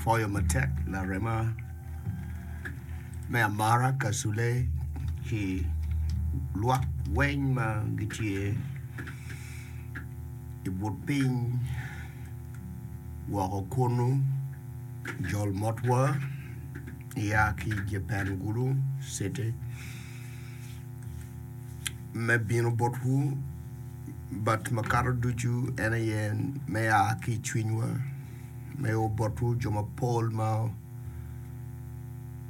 Pwoyo matek larema me amara Kasule ki lwak weng ma gitye i but piny woko kunu, Joel Motwa ya ki Japan Gulu City me bino botwu but makato ducu en aye me ya ki i cwinywa. Me o botwu jo mapol ma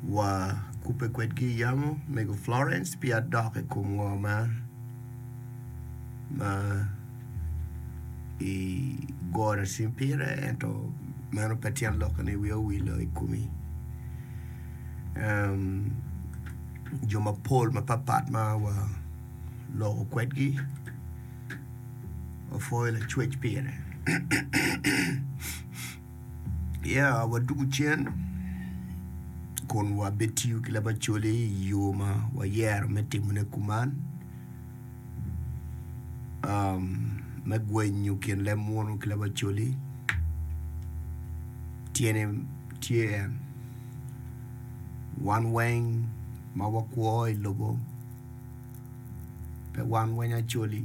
wa kubbe kwedgi i yamo, mego Florence pi adok i kom ngo ma ma i goro cim pire ento meno pe tyen lok ni wiya owilo i komi. Um, jo mapol mapat pat ma wa loko kwedgi opwoyo lacwec pire ya wadwogo cen kun wabitiyo ki labacoli i yo ma wayero me timone kuman um, me gwenyo kin leb munu ki labacoli tyene tye en wan weng ma wakwo i lobo pe wan weng Acholi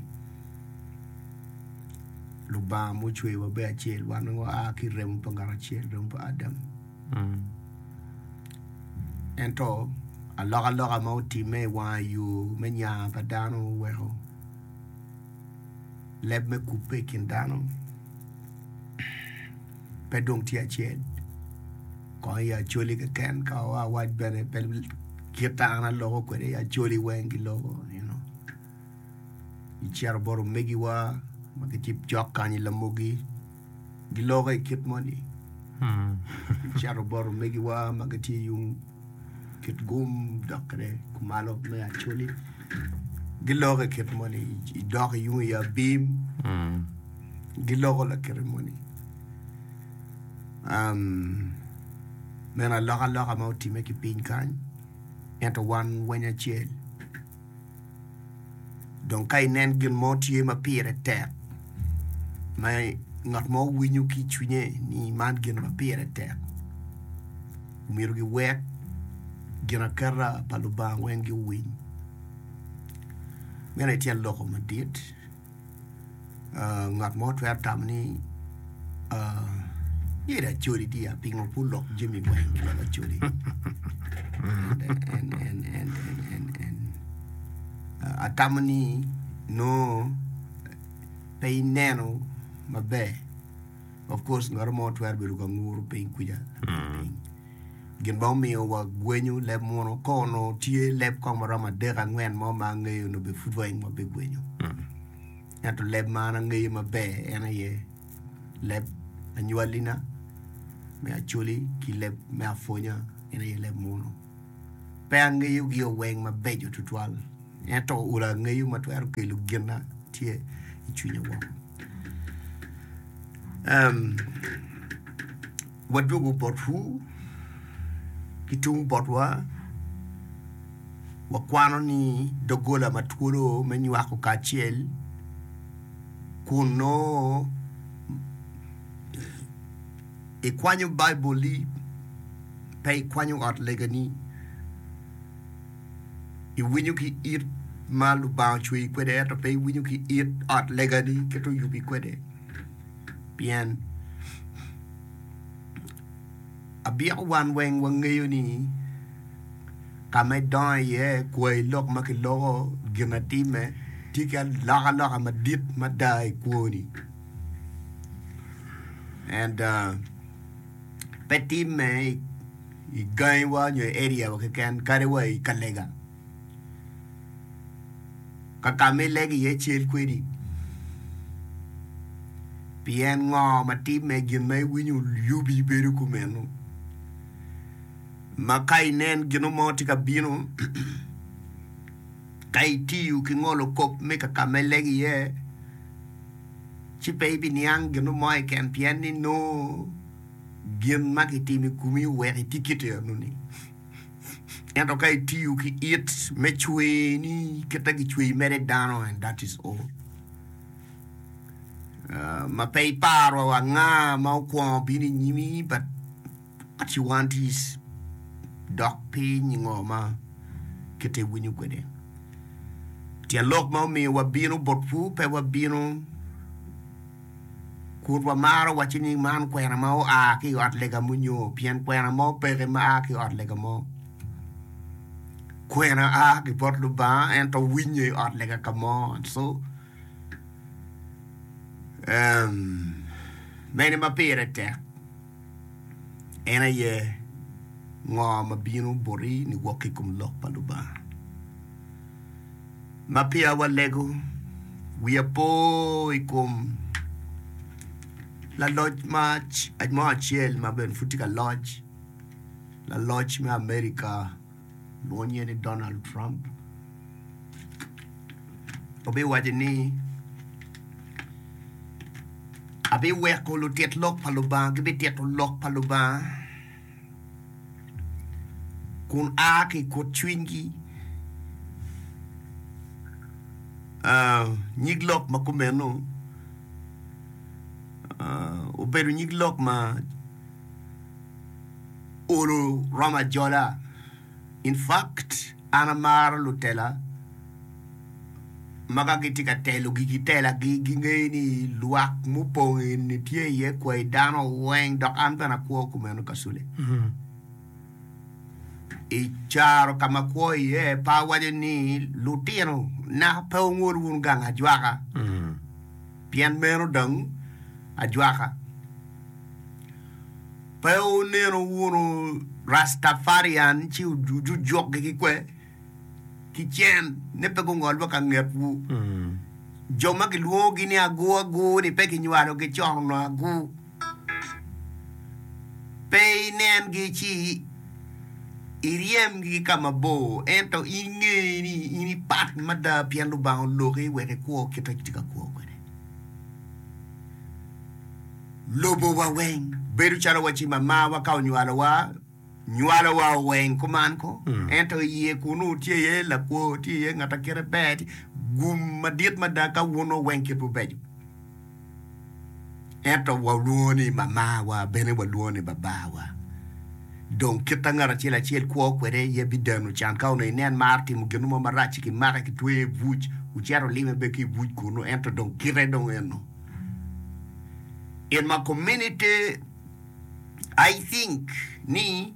Lubanga ma ocweyowa bedo acel wan weng wa ki i remo pa ngat acel remo pa Adam ento alokaloka ma otimme i wanga yo me nya pa dano oweko leb me kubbe i kin dano. pe dong tye acel kong i acholi keken ka o awac bene pe kita an aloko kwede i acholi weng giloko you know icito bot omegiwa ma gitye cok kany i lamogi giloko i kit moni icito bot omegiwa ma gitye yung kit gum dok kede kumalo me acholi giloko kit moni idok yung i abim giloko lakite moni meno alokaloka ma otime ki piny kany ento wan weny acel. Dong ka inen gin mo tye ma pire tek, ma ngat mo winyo ki i cwinye ni man gin ma pire tek, omyero giwek ginaketa pa Lubanga weng giwiny. Meno aye tyen loko madit. Ngat mo twero tamo ni myero acodi tye ya pingo pud lok jami weng dok acodi atamo ni nongo pe ineno maber. Of course ngat mo twero bedo ka nguru piny kuca. Mm. Gin ma omiyo wa gwenyo leb mono kono tye leb kong ma romo adek angwen mo ma angeyo no be pud weng wa be gwenyo. Mm. Ento leb ma an angeyo maber en aye leb anywalina me acoli ki leb me afonya en aye leb mono. Pe angeyo gio weng mabeco tutwal, ento olo angeyo ma twero kelo gina tye i cwinya woko. Um, wadwogo botwu, ki tung botwa, wakwano ni dogola ma twolo me nywako kacel kun noo Ikwanyo Baibulli, pe ikwanyo ot legani. Iwinyo ki it ma Lubanga ocweyi kwede ento pe iwinyo ki it ot legani kit ma oyubi kwede. Pien abyeko wan weng wangeyo ni ka ma idongo iye, kwayi lok ma kiloko, ginatime, tye ki alokaloka madit mada i kwoni. and pe timme i gangi wa nyo i area wa keken kadi wa i ka lega kakama i lego iye cel kwedi pien ngo ma timme gin ma i winyo yubi bedo kumeno ma ka i nen gino mo tye ka bino Ka itiyo ki ngolo kop me ka ka ma ilego iye, ci pe ibiniang gino mo keken pien ni nongo gin ma kitimo i komi oweko itye kit enoni. Ento ka itiyo ki it me cwereni kit ma kicweyi mere dano, and that is all, ma pe iparo wa anga ma okwongo bino i nyimi, but. Ciwantis, dok pi nyingo ma kite iwinyo kwede. Tyen lok ma omiyo wabino botwu pe wabino kun wamaro wacci ni man kwena ma oa ki i ot lega mo nyo pien kwena mo peke ma a ki i ot lega mo. Kwena a ki bot Lubanga ento winye i ot lega ka mo. So, mene ma pire tek? En aye ngo ma bino boti niwok ki i kom Lok pa Lubanga? Ma peya walego, wiya po i kom laloc mo acel ma bene pud tye ka loc, laloc me Amerika. Lwonye ni Donald Trump obiwaco ni, Abiweko lutit lok pa Lubanga gibitito lok pa Lubanga kun a ki i kut cwinygi. Uh, nyig lok ma kumeno uh, obedo nyig lok ma olo romo ajola. In fact an amaro lutela ma ka gitye ka telo gigi telagi gingeyo ni lwak mupong eni tye iye kwai dano weng dok an bene akwo kumeno kasule. I caro ka ma akwo iye pe awaco ni lutino na pe wungol wun gang ajwaka pien meno dong ajwaka. Pe wuneno wunu Rastafarian ci wujukgi ki kwer ki cen ni pe gungol wa ka ngetwu. Jo ma kilwongogi ni agu agu ni pe kinywalogi con onongo agu. Pe inengi ci iryemgi ki ka mabor ento in nge ni in ipat mada pien Lubanga oloki wek ikwo kit ma itye ka kwo kwede. lobowa weng. Bedo calo wa ci mamawa ka onywalowa, nywalowa o weng kuman ko, ento i iye kunu tye iye lakwo, tye iye ngat a kite ber, tye gum madit mada ka wun o weng kitwu beco. Ento wa olwongo ni mamawa, bene wa lwongo ni babawa. Dong kit a ngat acel acel kwo kwede iye bidano can ka onongo inen mar timo ginu mo marac ci kimake kitweye i buc, wucito lime bene ki i buc kunu, ento dong kite dong eno. In my community I think ni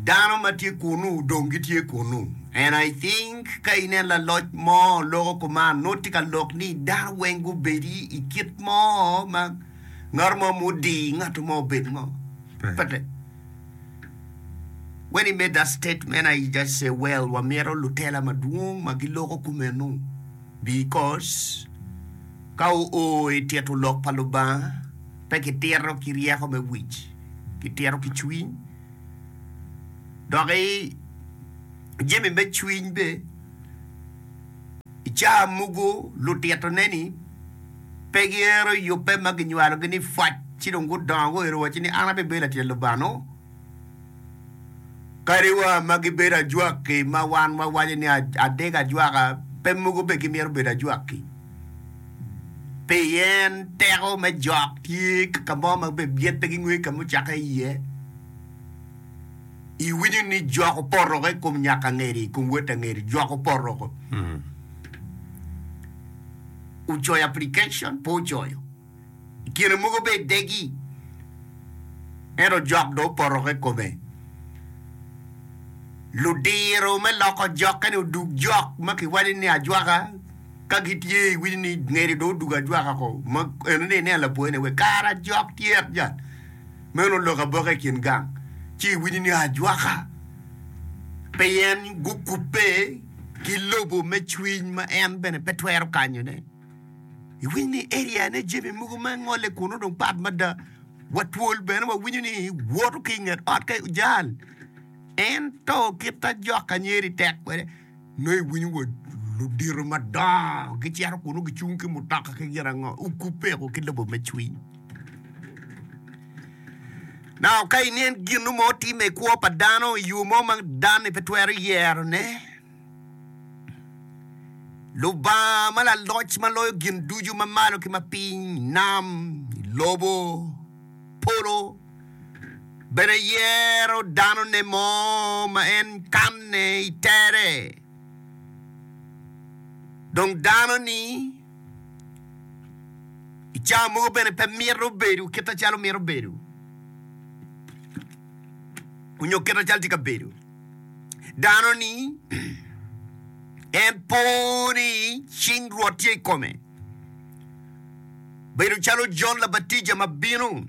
dano ma tye kunu dong gitye kunu and I think ka inen laloc mo loko kuman nongo tye ka lok ni dano weng gubedi i kit mo ma ngat mo ma odi ngat mo obed ngo but when he made that statement I just say well wamito lutela madwong ma giloko kumeno. Because ka oo i tito lok pa Lubanga, pe kitito ki ryeko me wic, kitito ki cwiny. Doki jami me cwiny be, i caa mugu lutito ne ni pe giero yubbe ma ginywalogi ni pwac ci dong gudongo guero waco ni an abibedo latin Lubanga noo. Kadiwa ma gibedo ajwaki ma wan wawaco ni adek ajwaka, pe mogo bene gimyero obed ajwaki. Pien teko me jok tye ka ka mo ma bene byet pe gingwee ka mucakke iye. Iwinyo ni jok opotoko i kom nyaka angeri, i kom wot angeri, jok opotoko. Ocoyo application, pe ocoyo. kine mogo be idegi, ento jok dong opoto ki kome. Ludiro me loko jokke ni odug jok ma kiwaco ni ajwaka ka gitye iwinyo ni ngede dong odug ajwaka ko ma eno ni ine lapor ni we kara ajok tyet jat. Meno lok aboka i kin gang ci iwinyo ni ajwaka pien gukubbe ki lobo me cwiny ma en bene pe twero kanyone. Iwinyo ni area ne jami mogo ma ngole kuno dong pat mada. Watwol bene wawinyo ni woto ki inget ot ka ojal. En to kita jok anyeri tek kwede. No iwinyo wa ludito madongo gicero kuno gicung ki mutoka ki gina ngo. Ukupeko ki lobo me cwiny. Na ka inen gino mo time i kwo pa dano i yo mo ma dano ni pe twero yero ne. Lubanga ma laloc ma loyo gin ducu ma malo ki ma piny, nam, lobo, polo, bene yero danone mo ma en kanne i tere. Dong dano-ni i cawa mogo bene pe mito bedo kite calo mito bedo onyo kite calo tye ka bedo. dano ni en po ni cing Rwot tye i kome, bedo calo Jon Labatija ma bino.